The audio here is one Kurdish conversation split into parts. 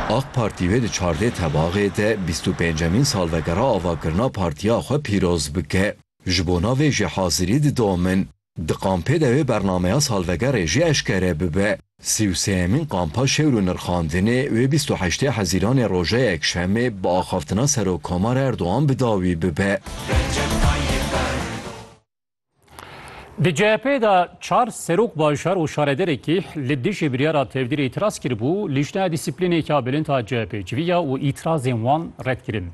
Ak Partî wê di çardeh Tebaxê de bîst û pêncemîn salvegera avakirina partiya xwe pîroz bike. Ji bona vê jî hazirî didomin in. Di kampê de wê bernameya salvegerê jî eşkere bibe. Sî û sêyemîn kampa şewr û nirxandinê wê bîst û heştê Hezîranê roja Yekşemê bi axaftina Serokkomar Erdogan bi dawî bibe. Di CHP'ê de çar serok bajar û şarederekî li dijî biryara tevdîrê îtiraz kiribû, lîşteya dîsîplînêka bilind a CHP'ê civiya û îtirazên wan red kirin.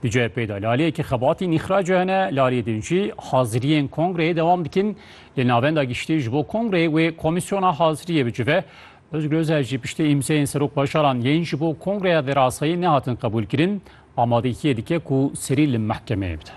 Di CHP'ê de laleyekî xebatîn îxraca hene, laliyê din jî haziriyên kongreyê dewam dikin. Lê Navenda Giştî ji bo kongreyê wê komîsyona haziriyê bicive. Ozgul Özel jî piştî îmzeyên serok bajaran yên ji bo kongreya verasayî nehatin qebûlkirin, amadeyîkiyê dike ku serî li mehkemeyê bide.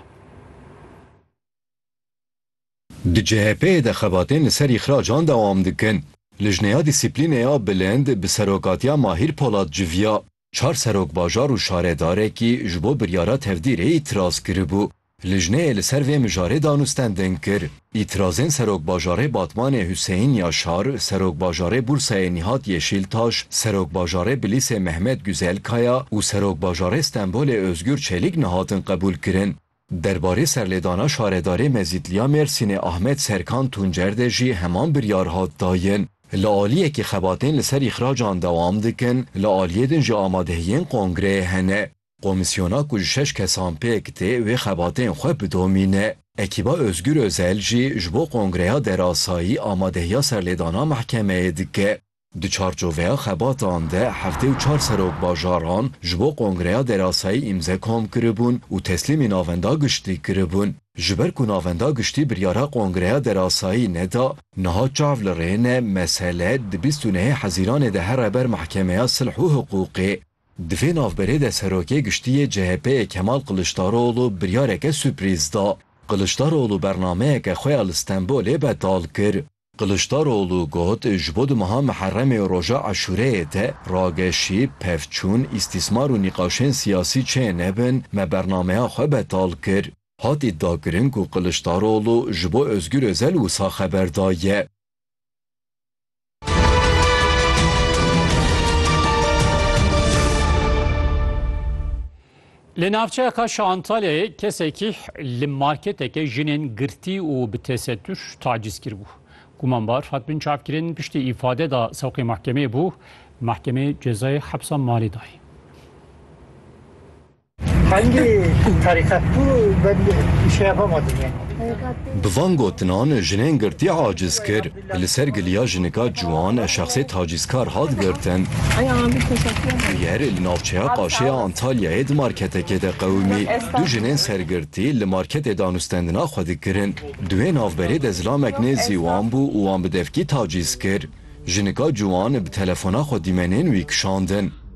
Di CHP'ê de xebatên li ser îxracan dewam dikin. Lijneya Dîsîplînê ya Bilind bi serokatiya Mahîr Polat civiya. Çar serokbajar û şaredarekî ji bo biryara tevdîrê îtiraz kiribû. Lijneyê li ser vê mijarê danûstendin kir. Îtirazên serokbajarê Batmanê Huseyîn Yaşar, serokbajarê Bursayê Nîhat Yeşîltaş, serokbajarê Bilîsê Mehmet Guzelkaya û serokbajarê Stenbolê Ozgur Çelîk nehatin qebûlkirin. Derbarê serlêdana şaredarê Mezîtliya Mêrsînê Ahmet Serkan Tuncer de jî heman biryar hat dayin. Li aliyekî xebatên li ser îxracan dewam dikin, li aliyê din jî amadehiyên kongreyê hene. Komîsyona ku ji şeş kesan pêk tê wê xebatên xwe bidomîne. Ekîba Ozgur Ozel jî ji bo kongreya derasayî amadehiya serlêdana mehkemeyê dike. Di çarçoveya xebatan de heftê û çar serok bajaran ji bo kongreya derasayî îmze kom kiribûn û teslîmê navenda giştî kiribûn. Ji ber ku navenda giştî biryara kongreya derasayî neda, niha çav li rê ne mesele di bîst û nehê hezîranê de here ber mehkemeya silh û hiqûqê. Di vê navberê de serokê giştî yê CHP'ê Kemal Kiliçdaroglu biryareke suprîz da. Kiliçdaroglu bernameyeke xwe ya li Stenbolê betal kir. Kiliçdaroglu got, Ji bo di meha Miherremê û roja Eşûreyê de rageşî, pevçûn, îstîsmar û nîqaşên siyasî çê nebin, me bernameya xwe betal kir. Hat îdiakirin ku Kiliçdaroglu ji bo Ozgur Ozel wisa xeber daye. Li navçeya Kaş a Antalyayê kesekî li marketeke jinên girtî û bi tesetûr tacîz kiribû. Gumanbar hat binçavkirin piştî îfade da sewqê mahkemeyê bû, mahkemeyê cezayê hepsa malê dayê. Hangî tarîqet bû ben îşeya vama dinyayê. Bi van gotinan jinên girtî aciz kir. Li ser giliya jinika ciwan şexsê tacîzkar hat girtin. Bûyer li navçeya Qaşeya Antalyayê di marketekê de qewimî. Du jinên sergirtî li marketê danûstendina xwe dikirin. Duhê navberê de zilamek nêzî wan bû û wan bi devkî tacîz kir. Jinika ciwan bi telefona xwe dîmenên wî kişandin.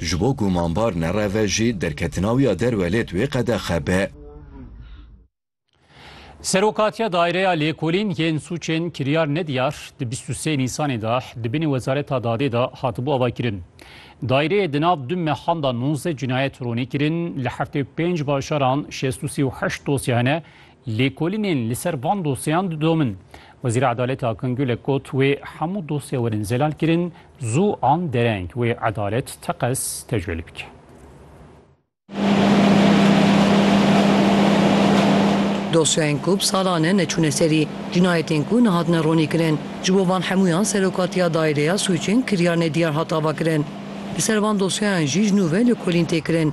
Ji bo gumanbar nereve jî derketinawiya derwe lêt wê qedexe be. Serokatiya Daireya Lêkolîn yên Sûcên Kiryar Nediyar di bîst û sê Nîsanê de di binê Wezareta Dadê de hatibû avakirin. Daireyê di nav du mehan de nozdeh cinayet ronî kirin, li heftê û pênc bajaran şêst û sê û heşt dosye hene Lêkolînên li ser van dosyeyan didomin. Wezîra Edaletê Akın Gülek got, Wê hemû dosye werin zelalkirin zû an dereng, wê edalet teqez tecwêl bike. Dosyayên ku bi salan e neçûne serî, cinayetên ku nehatine ronîkirin, ji bo van hemûyan Serokatiya Daîreya Sûcên Kiryarnedîyar hat avakirin. Li ser van dosyeyan jî ji nû ve lêkolîn tê kirin.